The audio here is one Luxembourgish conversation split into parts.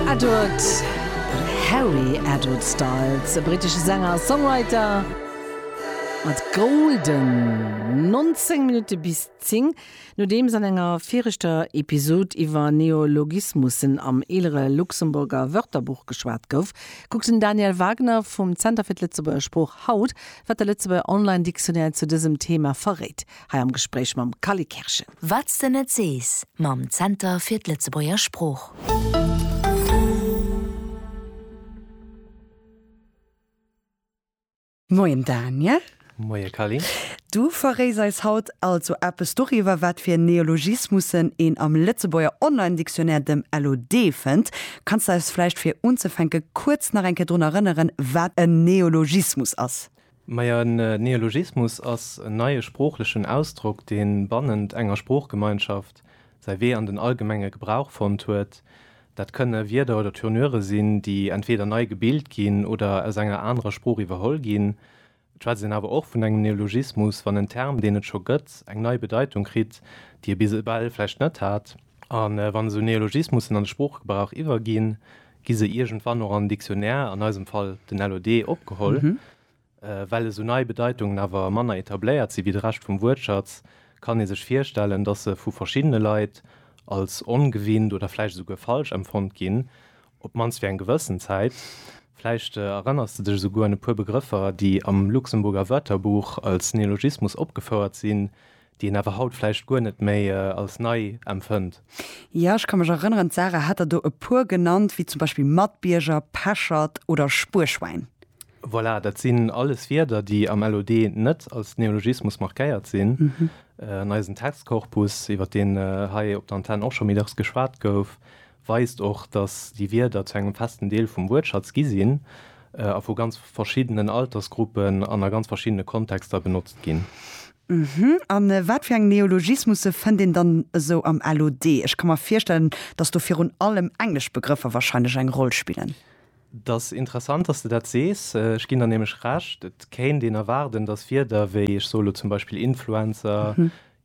Edward Harry Edward Styles, e brittesche Sänger a Songwriter, mat Golden. 19 Minutte bis 10. Nodeems an enger viregter Episod iwwer Neologismussen am eelere Luxemburger Wörterbuch geschwat gouf, kuckt den Daniel Wagner vum Zenter fir d'Lëtzebuerger Sprooch haut, wat de Lëtzebuerger Online-Dictionnaire zu dësem Theema verréit. hei am Gespréich mam Kalle Kerschen. Wat s de net sees mam Zenter fir d'Lëtzebuerger Sprooch. Moien Daniel. Moie Kalle. Du verréis eis haut also eppes doriwwer, wat fir Neologismussen een am Lëtzebuerger Online-Dictionnaire, dem LOD, fënnt. Kanns de eis vläicht fir unzefänke kuerz nach eng Kéier drun erënneren, wat en Neologismus ass? Majo, en Neologismus ass en neie sproochlechen Ausdrock, dee bannent enger Sproochgemeinschaft säi Wee an den allgemenge Gebrauch fonnt huet. Dat kënne Wierder oder Tournure sinn, déi entweeder nei gebilt ginn oder aus enger anerer Sprooch iwwerholl ginn. Et schwätzt een awer och vun engem Neologismus, wann en Term, deen et scho gëtt, eng nei Bedeitung kritt, déi e bis ewell vläicht net hat. A wann esou Neologismussen an de Sproochgebrauch iwwerginn, Gi se iergendwann och am Dictionnaire, an eisem Fall den LOD, opgeholl. Well esou nei Bedeitungen awer manner etabléiert si wéi de Rescht vum Wuertschatz, kann ee sech virstellen, datt se vu verschiddene Leit als ongewinnt oder vläicht esouguer falsch empfonnt ginn, op d'mannst fir eng gewëssen Zäit. Vläicht erënners de dech esouguer un e puer Begrëffer, déi am Luxemburger Wörterbuch als Neologismus opgefouert sinn, déi een awer haut vläicht guer net méi als nei empfënnt. Jo, ech ka mech erënneren, d'Sarah hat der do e puer genannt, wéi zum Beispill Matbierger, Peschert oder Spuerschwäin. Voilà, dat sinn alles Wierder, déi am LOD net als Neologismus markéiert sinn. An eisen Textkorpus, iwwert deen hei op der Antenn och scho méi dacks geschwat gouf, weist och, datt déi Wierder zu engem festen Deel vum Wuertschatz gi sinn a vu ganz verschiddenen Altersgruppen an a ganz verschiddene Kontexter benotzt ginn. A wat fir eng Neologismusse fënnt een dann esou am LOD? Ech ka mer virstellen, datt do virun allem englesch Begrëffer warscheinlech eng Roll spillen. Et ass interessant, datt s de dat sees. Ech ginn der nämlech Recht. Et kéint een erwaarden, datt Wierder wéi, ech soe lo zum Beispill Influencer,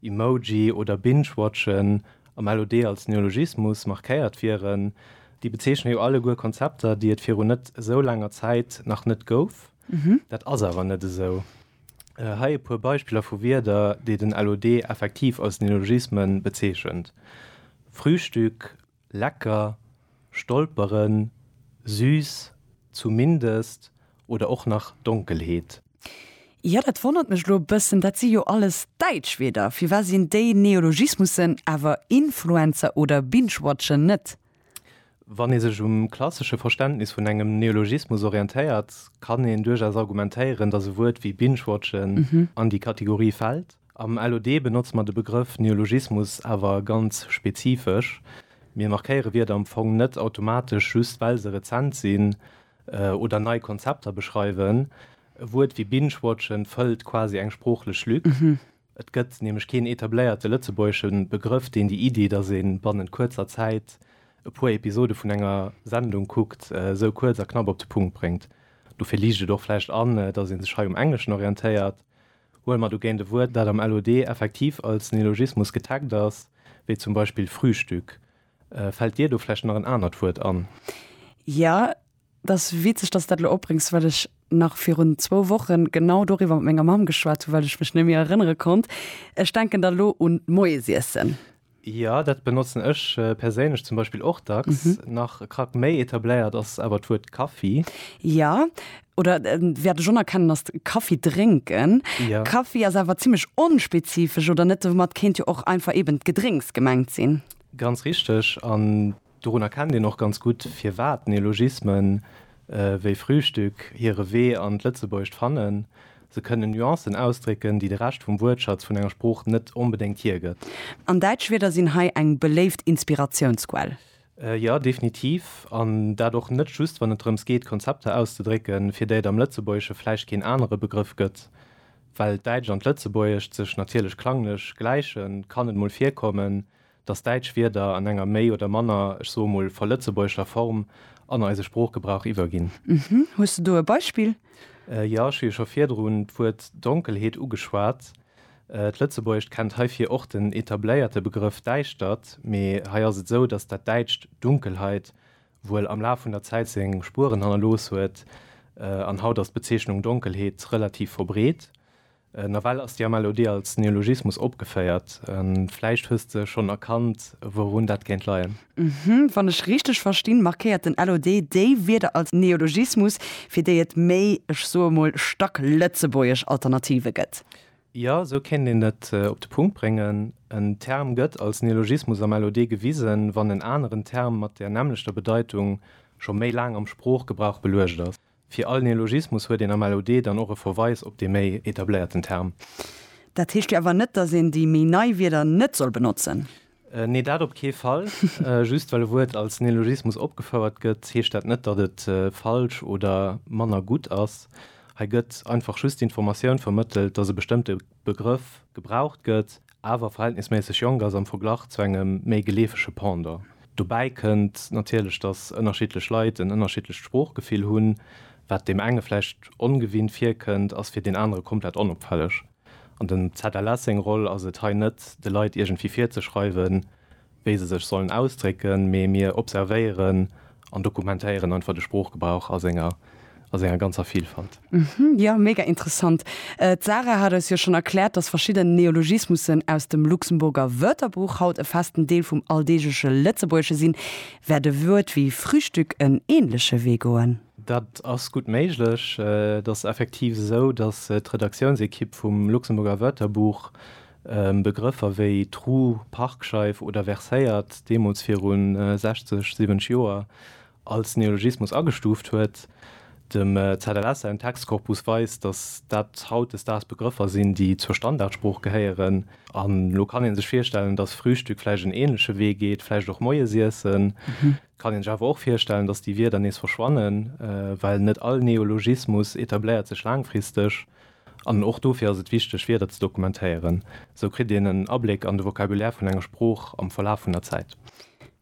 Emoji oder Binge-Watchen, am LOD als Neologismus, markéiert wieren. Déi bezeechne jo alleguer Konzepter, déi et virun net esou laanger Zäit nach net gouf. Dat ass awer net esou. Hei e puer Beispiller vu Wierder, déi den LOD effektiv als Neologisme bezeechent, Frühstück, Lecker, stolperen, süß, zumindest oder och nach Donkelheet. Jo, dat wonnert mech elo e bëssen, dat si jo alles däitsch Wierder. Firwat sinn déi Neologismussen awer Influencer oder Binge-Watchen net? Wann ee sech um klassesche Verständnis vun engem Neologismus orientéiert, kann een duerchaus argumentéieren, datt e Wuert wéi Binge-Watchen an déi Kategorie fält. Am LOD benotze mer de Begrëff Neologismus awer ganz spezifesch. Mir markéiere Wierder am Fong net automatesch just well se rezent sinn oder nei Konzepter beschreiwen. E Wuert wéi Binge-watchen fëllt quasi eng sproochlech Lück. Et gëtt nämlech keen etabléierte lëtzebuergesche Begrëff, deen déi Iddi, datt ee bannent kuerzer Zäit e puer Episode vun enger Sendung kuckt, esou kuerz a knapp op de Punkt bréngt. Dofir liicht et och vläicht an, datt ee sech hei um Engleschen orientéiert. Huele mer dogéint e Wuert, dat am LOD effektiv als Neologismus getaggt ass, wéi zum Beispill Frühstück. Fält dir do vläicht nach en anert Wuert an? Jo, et ass witzeg, dass s dat elo opbréngs, well ech nach virun zwou Wochen genau doriwwer mat menger Mamm geschwat hu well ech mech net méi erënnere konnt. Ech denken da lo un d'Moiesiessen. Jo, dat benotzen ech perséinlech zum Beispill och dacks. Nach e Krack méi etabléiert ass awer d'Wuert Kaffi. Jo, oder wäert ech onerkennen, ass Kaffi drénken. Jo. Kaffi ass awer zimmlech onspezifesch, oder net? Domat kéint jo och einfach eeben d'Gedrénks gemengt sinn. Ganz richteg, an Dorun erkennt een och ganz gutt, firwat Neologismen wéi Frühstück hire Wee an d'Lëtzebuergescht fannen, Se kënnen Nuancen ausdrécken, déi de Rescht vum Wuertschatz vun enger Sprooch net onbedéngt hiergëtt. An däitsch Wierder sinn hei eng beléift Inspiratiounsquell. Jo, definitiv. An dat och net just, wann et drëms geet, Konzepter auszedrécken, fir déi et am Lëtzebuergesche vläicht keen anere Begrëff gëtt. Well d'Däitscht an d'Lëtzebuergescht sech natierlech klanglech gläichen, kann et mol virkommen, dass däitsch Wierder an enger méi oder manner, ech soe mol, verlëtzebuergeschter Form an eise Sproochgebrauch iwwerginn. Hm, hues de do e Beispill? Jo, ech hu jo scho virdrun d'Wuert Donkelheet ugeschwat. D'Lëtzebuergescht kennt heifir och den etabléierte Begrëff Däischtert, mee hei ass et esou, dass dat däitscht Dunkelheit wuel am Laf vun der Zäit seng Spueren hannerlooss huet an haut ass d'Bezeechnung Donkelheet relativ verbreet. Nawell ass déi Amalodie als Neologismus opgeféiert. Vläicht hues de schonn erkannt, wourun dat kéint leien? Uhhm. Wann ech richteg verstinn, markéiert den LOD déi Wierder als Neologismus, fir déi et méi, ech soe emol, stacklëtzebuergesch Alternative gëtt. Jo, esou kéint een et op de Punkt bréngen. En Term gëtt als Neologismus am LOD gewisen, wann en aneren Term mat där nämmlechter Bedeitung scho méi laang am Sproochgebrauch beluecht ass. Fir all Neologismus huet een am LOD dann och e Verweis op dee méi etabléierten Term. Dat heescht jo awer net, dass een déi méi nei Wierder net soll benotzen? Nee, dat op kee Fall. Just well e Wuert als Neologismus opgefouert gëtt, heescht dat net, datt et falsch oder manner gutt ass. Hei gëtt einfach just d'Informatioun vermëttelt, dass e bestëmmte Begrëff gebraucht gëtt, awer verhältnisméisseg jonk ass am Verglach zu engem méi geleefege Pendant. Dobäi kënnt natierlech, datt ënnerschiddlech Leit en ënnerschiddlecht Sproochgefill hunn. Wat deem enge vläicht ongewinnt virkënnt, ass fir deen anere komplett onopfälleg. An dem ZLS seng Roll ass et, hei net de Leit iergendwéi virzeschreiwen, wéi se sech sollen ausdrécken, mee mir observéieren an dokumentéieren einfach de Sproochgebrauch a senger, a senger ganzer Vilfalt. Jo, mega interessant. D'Sarah hat eis jo schonn erkläert, dass verschidden Neologismussen aus dem Luxemburger Wörterbuch haut e festen Deel vum alldeegleche Lëtzebuergesche sinn. Wäert e Wuert wéi Frühstück en änleche Wee goen? Dat ass gutt méiglech. Et ass effektiv esou, dass d'Redaktiounsekipp vum Luxemburger Wörterbuch Begrëffer wéi Tru, Parkscheif oder Verséiert deemools viru 60, 70 Joer als Neologismus agestuuft huet. Dem ZLS säin Textkorpus weist, datt dat hautdesdaags Begrëffer sinn, déi zur Standardsprooch gehéieren. An elo kann ee sech virstellen, datt Frühstück vläicht en änleche Wee geet, vläicht och Moiesiessen. Et kann een sech awer och virstellen, datt déi Wierder nees verschwannen, well net all Neologismus etabléiert sech laangfristeg. An och dofir ass et wichteg, Wierder ze dokumentéieren. Esou kritt een en Abléck an de Vocabulaire vun enger Sprooch am Verlaf vun der Zäit.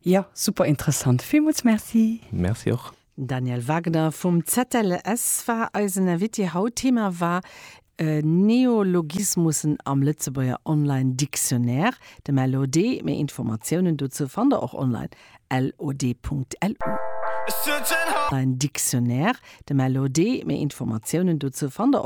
Jo, super interessant. Villmools Merci! Merci och! Daniel Wagner vum ZLS war eisen Invité haut. Thema war Neologismussen am Lëtzebuerger Online Dictionnaire, dem LOD. Méi Informatiounen dozou fannt der och online, lod.lu. Online Dictionnaire, dem LOD. Méi Informatiounen dozou fannt der.